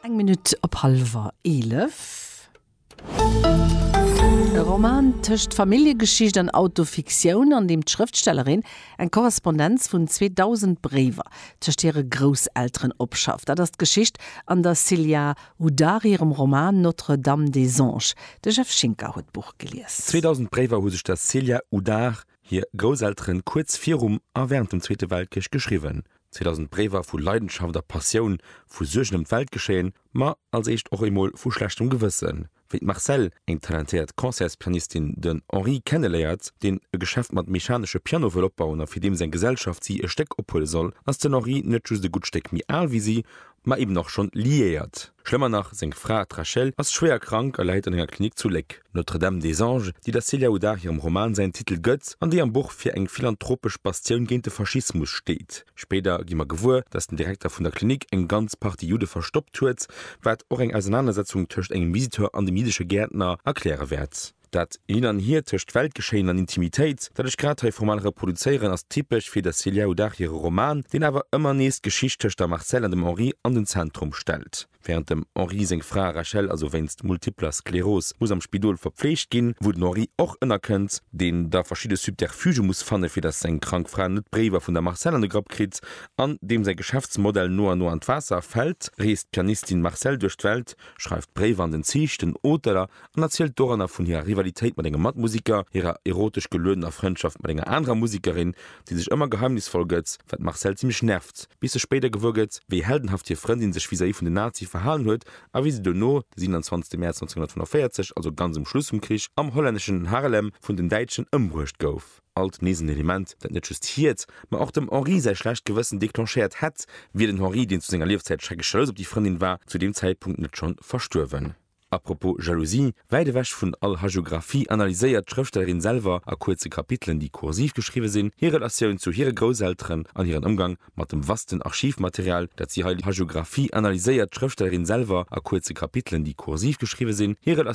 Eng Minutt op hallwer eelef. E Roman tëscht Familljegeschicht an Autofiktioun, an deem d'Schrëftstellerin eng Korrespondenz vun 2.000 Bréiwer tëscht hire Grousselteren opschafft. Dat ass d'Geschicht an der Silya Hudari hirem Roman Notre Dame des Anges. De Jeff Schinker huet d'Buch gelies. 2.000 Bréiwer hu sech der Silya Hudar hir Grousselteren kuerz virum a während dem Zweete Weltkrich geschriwwen. 2000 Bréiwer vu Leidenschaft a Passioun, vu Suergen ëm d'Weltgeschéien, ma als éischt och emol vu schlechtem Gewëssen, wéi d'Marcelle, eng talentéiert Concertspianistin, den Henri kenneléiert, deen e Geschäft mat mechanesche Piano wëll opbauen a fir deem seng Gesellschaft si e Stéck ophuele soll, ass den Henri net just e gutt Stéck méi al wéi si ma eben och schonn liéiert. Schlëmmer nach, seng Fra, d'Rachel, ass schwéier krank a läit an enger Klinik zu Léck. Notre-Dame des Anges, déi der Célia Houdard hirem Roman säin Titel gëtt, an déi am Buch fir eng philanthropesch Bastioun géint de Faschismus steet. Spéider gi mer gewuer, datt den Direkter vun der Klinik eng ganz Partie Judde verstoppt huet, wat och eng Ausernanersetzung tëscht engem Visiteur an dem jiddesche Gäertner erkläre wäert. Dat Hin an Hier tëscht Weltgeschéien an Intimitéit, dat ech grad hei formal reproduzéieren, ass typesch fir der Célia Hodacht hire Roman, deen awer ëmmer nees d'Geschicht tëscht der Marcelle an dem Henri an den Zentrum stellt. Wärend dem Henri seng Fra Rachel also wéinst multipler Skleros muss am Spidol verpfleegt ginn, wou den Henri och ënnerkënnt, deen da verschidde Subterfugë muss fanne fir datt seng krank Fra net d'Bréiwer vun der Marcelle an de Grapp kritt, an deem säi Geschäftsmodell no an no an d'Waasser fält, reest d'Pianistin Marcelle duerch d'Welt, schreift Bréiwer an den Zich, den Auteler an erzielt doranner vun hirer Rivalitéit mat engem Matmusiker, hirer erotesch geluedener Frëndschaft mat enger anerer Musikerin, déi sech ëmmer geheimnisvoll gëtt, wat d'Marcelle zimmlech nervt, bis se spéider gewuer gëtt, wéi heldenhaft hir Frëndin sech vis-à-vis vun den Nazie verhalen huet a wéi se dono, de 27 Mäerz 1945, also ganz um Schluss vum Krich, am hollänneschen Haarlem vun den Däitschen ëmbruecht gouf. Alt nees en Element, dat net just hiert, mä och dem Henri säi schlecht Gewëssen declenchéiert hätt, wier den Henri, deen zu senger Liefzäit schrecklech jalous op déi Frëndin war, zu deem Zäitpunkt net schonn verstuerwen. A propos Jalousie, Wäit ewech vun all Hagiographie analyséiert d'Schrëftstellerin selwer a kuerze Kapitelen, déi kursiv geschriwwe sinn, hir Relatioun zu hire Grousselteren an hiren Ëmgang mat dem vasten Archivmaterial, dat si hei Hagiographie analyséiert d'Schrëftstellerin selwer a kuerze Kapitelen, déi kursiv geschriwwe sinn, hir